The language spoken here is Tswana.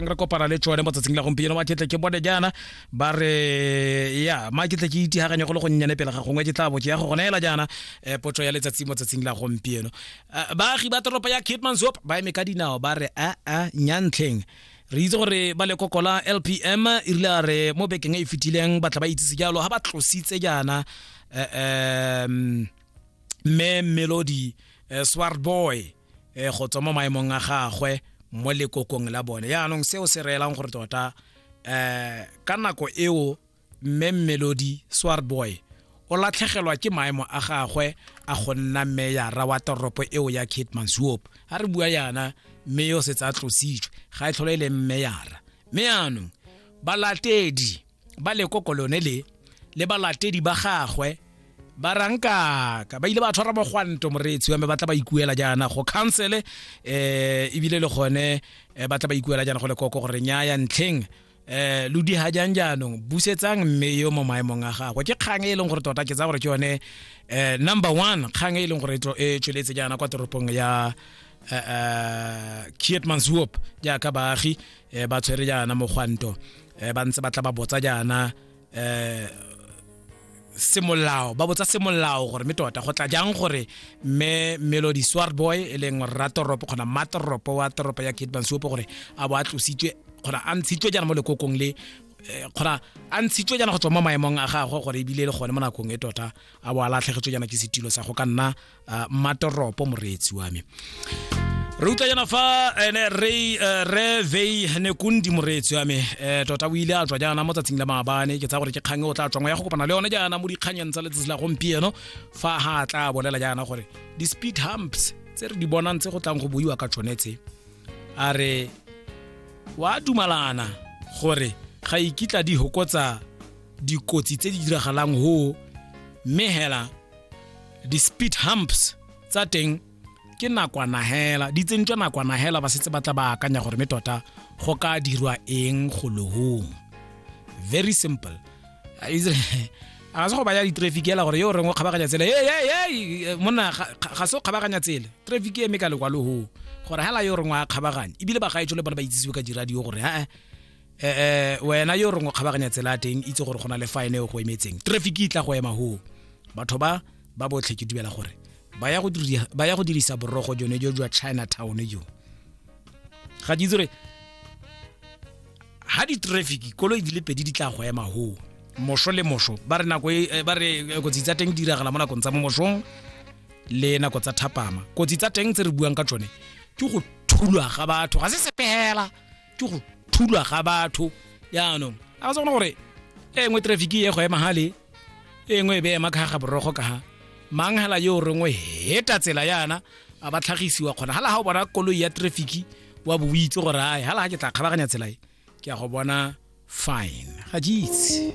re kopana le tsone mo tsatsing la gompieno ba ketle ke bone jaana ba re ya ma ketle ke itihaganye go le go nnyane pele ga gongwe ke tla bo ke ya go goneela jaana eh, potso ya letsatsi mo tsatsing la gompieno Eh, baagi ba toropo ya kitmansop ba eme ka dinao ba re a a nyantlheng re itse gore ba lekokola lpm e rile a re mo bekeng e e fetileng batla ba itsise jalo ga ba tlositse jaana eh, em, mme melody eh, swart boy um go tswa mo maemong a gagwe mo lekokong la bone yaanong seo se reelang gore tota um ka nako eo mme melodi swarboy o latlhegelwa ke maemo a gagwe a go nna meyara wa toropo eo ya kate mansuop ga re bua yana mme yo setse a tlositswe ga e tlhole e leng meyara mme yaanong balatedi ba lekoko lone le le balatedi ba gagwe ba rankaka ba ile ba tshwara mogwanto moreetsi wa me ba tla ba ikuela jaana go councele um ebile le gone eh, ba tla ba ikuela jaana go lekoko gore nyaya ntlheng eh lo di ha jang jaanong busetsang mme yo mo maemong a gagwe ke kgang e e leng gore tota ke tsa gore ke yone eh number one kgang e e leng gore e tlo- e tsweletse jaana kwa toropong ya uh, Kiet Manshoop jaaka baagi eh ba tshwere jaana mogwanto eh ba ntse ba tla ba botsa jaana eh semolao ba botsa semolao gore mme tota go tla jang gore mme melody swarboy e leng rratoropo kgona matoropo wa toropo ya kate bansuopo gore a bo a tlositswe kgona a ntshitswe jaana mo lekokong le eh, kgona a ntshitswe jaana go tswa mo maemong a gagwe gore ebile e le gone mo nakong e tota a bo a latlhegetswe jaana ke setilo sa go ka nna uh, mmatoropo moreetsi wa me re utlwa jana fa ene re eh, re vei ne kundi moreetsi wa me eh, tota o ile a tswa jaana mo tsatsing la maabane ke tsa gore ke kgang e o tla tswangwa ya go kopana le yone jaana mo dikganyeng tsa letsatsi la gompieno fa ha tla bolela jaana gore di-speed humps tse re di bonang tse go tlang go buiwa ka tsone tse a re wa dumalana gore ga ikitla di hokotsa dikotsi tse di diragalang ho mme hela di-speed humps tsa teng ke nakwana hela di tsentswa nakwana hela ba setse ba tla ba akanya gore me tota go ka dirwa eng go lohong very simple a se go baya di-traffic ela gore yo o reng o kgabaganya tsela ee monna ga se o kgabaganya tsela traffic e eme ka lekwa lohong gore hela yo o reng wa kgabaganya ebile bagaetso le bone ba itsisiwe ka diradio gore ee eh wena yo rongwe kgabaganya tsela teng itse gore go na le fine e go emetseng traffic e tla go ema ho batho ba ba botlhe ke dumela gore ba ya go dirisa borogo jone jo jwa chinatown jo ga di itse gore ga di-traffic koloi di le pedi di tla go ema ho moso le moso ba re nako e, eh, ba re eh, kotsi tsa teng di diragala mo nakong tsa mo mosong le nako tsa thapama kotsi tsa teng tse re buang ka tsone ke go thulwa ga batho ga se sepela ke go thulwa ga batho jaanong a ka se gone gore e nngwe traffic e go ema gale e nngwe e be ema ka ga borogo ka ga mang hela yo rengwe heta tsela yana a ba tlhagisiwa kgona hala ha o bona koloi ya traffic wa bo itse gore ai hala ha ke tla kgabaganya tsela e ke ya go bona fine ga jeitse